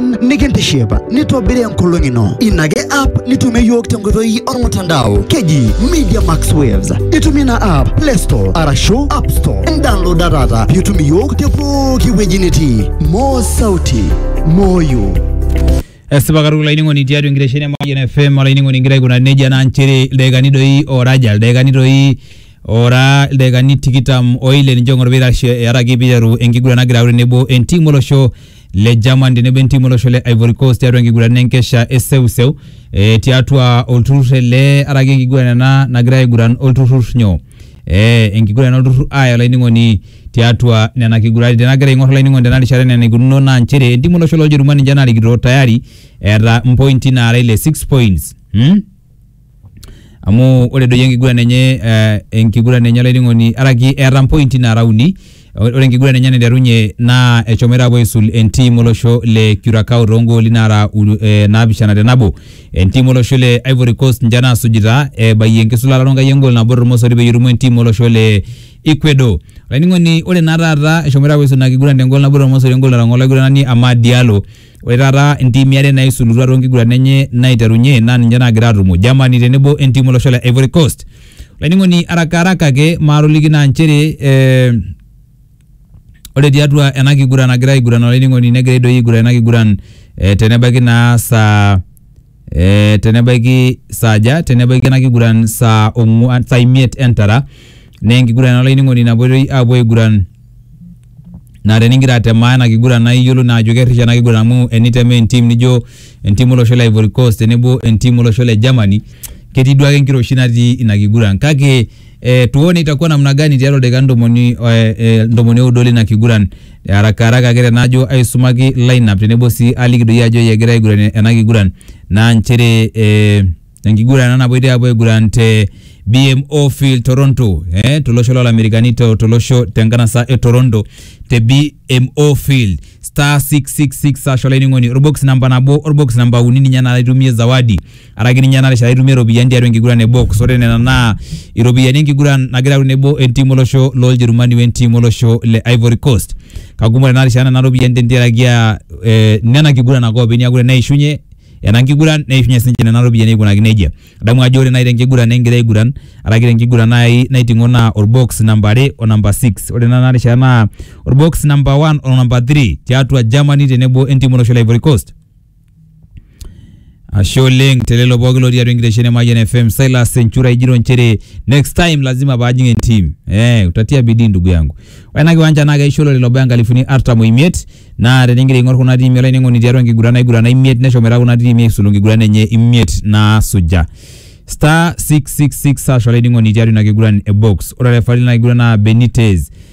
pookin nikintiship nitobiri enkolong ino ina ake app nitumie yiok tenkoitoi ormutandao keji media max waves itumie ina app play store arashu app store ndownloada taata piitum iyiok te pooki wueji nitii moo sauti moyo esipa katukul olainining'oni tiatua enkitesheni e Mayian FM olainining'oni ingira aikuna nejia naa nchere ildaikani doi oora aja ildaikani doi oora ildaikani tikitam oile ninche ong'or pitashe earaki piiteru enkiguran nagira aure tenebo entim olosho le German tenebo entimu olosho le Ivory Coast tiatua enkiguran enkesha e seuseu e, tiatua olturrur ele araki enkiguran ena nagira aiguran olturrur nyoo e, enkiguran olturrur aya olainining'oni tiatua nena kiguraritin nagira aing'or olainining'oni tena rishata enaa enaikununo naa nchere entimu olosho loljerumani ninche narikito tayari eeta mpointi naara ile 6 points hmm? amu ore doi enkiguran enye eh enkiguran enye olainining'oni araki eeta mpointi nara uni, ore enkiguran enye enaiterunye naa eshomoita apuo aisul entim olosho le Curacao togooli nara uni eh naapishana te nabo. Entim olosho le Ivory Coast ninche nasujita ebayie enkisulata ronkai egol nabo tormosori peyie erumu entim olosho le Ecuador. Olainining'oni ore naa taata eshomoita apuo aisulu ina kiguran tegol nabo tormosori egol natang'oro olaiguranani Amad Diallo. Ore taata intiimi are naisulutua toonkiguran enye naiterunye naa ninche naagira aatumo, Germany tenebo entiim olosho le Ivory Coast. Olainining'oni araka araka ake maatoliki naa nchere eh, ore tiatua ena kiguran nagira aiguran olainining'oni negira doi aiguran ena kiguran eh, tenebaiki naa saa e, tenebaiki saaja tenebaiki ena kiguran saa ong'uan saa imiet entara naa enkiguran olainining'oni napuoi aapuo aiguran naa tenigira atemaa ena kiguran naa iyiolou naa ajo kerrish ena kiguran amu enitemaa entim nijo entim olosho le Ivory Coast tenebo entim olosho le Germany ketii duake enkiroshi natii ina kiguran kake eh, tuone itakuwa namna gani tiatua ildaikani ntomoni eh, eh, ntomoni oudo lina kiguran Arakaraka ake tenajo aisumaki lineup tenebo sii aliki doi ajo egira aiguran ena kiguran naa nchere eh, enkiguran ena napuoitoi apuo aiguran te BMO Field Toronto eh, tolosho lolamerikani to- tolosho tenkanasa e Toronto te BMO Field star 666 ashu olainining'oni orbox namba nabo orbox namba uni ninye naa itumie zawadi araki ninye ena rishata itumie iropiyiani tiatua enkiguran e box ore nena naa iropiyiani enkiguran nagira aaku tenebo entim olosho loljerumani wentim olosho le ivory coast kakumok tena rishata nena ropiyiani tentiaraki aa eh, nena kiguran ake openy niaku teneishunye ena nkiguran neishunye sinche nena ropiyiani aikunaki nejia adamu ajo ore naaji tenkiguran ningira aiguran araki tenkiguran naaji naiting'o naa orbox namba are o namba six ore naa ena rishata naa orbox namba one o namba three tiatua Germany tenebo entim olosho le ivory coast Ashe oleng telelo pooki lotii atua enkitesheni e Mayian FM Silas Enchura ijito nchere next time lazima paajing entim. Eh, utatia bidii ndugu yangu. Ore ena kiwanja naa keisho olorere lobaya nkalifuni artam oimiet naa tenigira aing'or kuna tiimi olainining'oni tiatua nkiguran naigurana imiet neshomoita kuna tiimi aisulu nkiguran enye imiet naasuja. Star 666 hash olainining'oni tiatua ina kiguran e box. Ore orefari lina kiguran naa Benitez.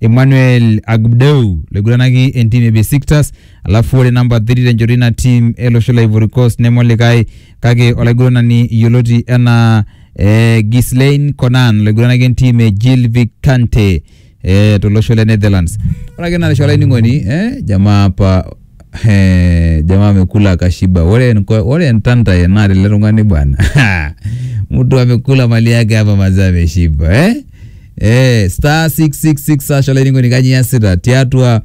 Emmanuel Agbdeu laiguranaki entim e Besiktas alafu ore namba 3 tenchoto ina tim ele osho le Ivory Coast neme olikae kake olaiguranani yioloti enaa eh, Ghislain Conan olaiguranaki entim e Gilvik Kante eh, tolosho le Netherlands. Ore ake ina rishata olainining'oni eh, jamaa apa He, jamaa amekula akashiba. Ore nko- ore ntantae naa lele tung'ani bwana. Mtu amekula mali yake hapa mazee ameshiba eh? Eh, star 666 hash olainining'oni kaji iasita tiatua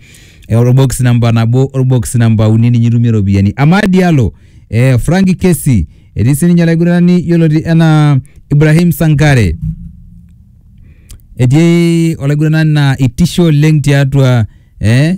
eh, orbox namba nabo orbox namba uni ninye itumie iropiyiani. Amad Diallo, eh, Frankie Kesi, etii sininye olaiguranani yioloti enaa Ibrahim Sankare etii olaiguranani naa itisho oleng tiatua eh,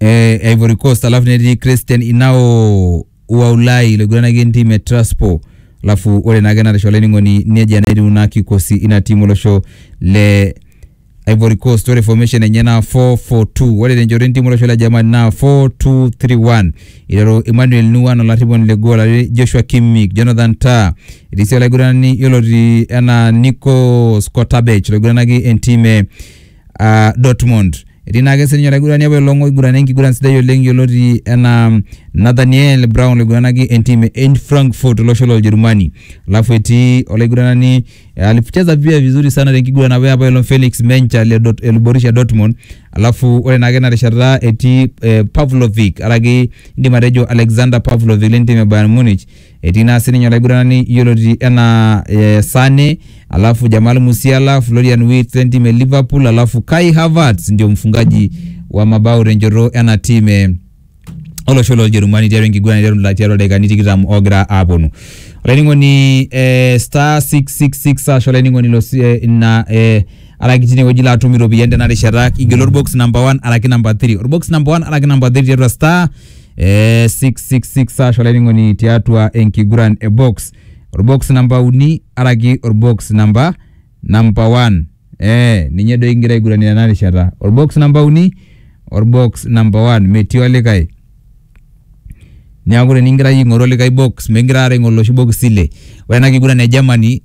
eh, e Ivory Coast alafu netii Christian Inao wa Ulai loiguranaki entim e Traspo alafu ore naake natisho olainining'oni nejia naa etiu naa kikosi ina timu olosho le Ivory Coast ore formation enye naa 442 ore tenchoto entim olosho le Germany naa 4231 iteru Emmanuel Nuan olarriponi le goal are Joshua Kimmich Jonathan Tah etii sii olaiguranani yioloti enaa Nico Scottabech loiguranaki entim e uh, Dortmund. Etii naake sininye olaigurani apa olong' oigurana enkiguran sidai oleng' yioloti enaa Nathaniel Brown loiguranaki entim e Eintracht Frankfurt olosho loljerumani. Alafu etii olaiguranani alicheza pia vizuri sana tenkiguran apa apa olong' Felix Mencha le Dort- le Borussia Dortmund. Alafu ore naake ena rishata etii eh, Pavlovic araki indim atejo Alexander Pavlovic lentim e Bayern Munich Etii naa sininye olaiguranani yioloti enaa eh, Sane, alafu Jamal Musiala, Florian Wirtz lentim e Liverpool, alafu Kai Havertz ndio mfungaji wa mabao tenchoto ena tim eh, olosho loljerumani tiatua enkiguran aiteru ila- tiatua ildaikani tikitam ogira aponu olainining'oni eh, star 666 ashu olainining'oni lo si- eh, ina eh, araki tinewueji laatum iropiyiani tena rishata igelu orbox number 1 araki number 3 orbox number 1 araki number 3 tiatua star eh, 666 hash olainining'oni tiatua enkiguran e box orbox namba uni araki orbox namba namba 1 eh, ninye doi kigira aiguranie tena rishata orbox namba uni orbox namba 1 metii olikae neeku tenikigira iyie aing'oru olikae box mikigira aare aing'oru iloshi bokisi ile ore ena kiguran e Germany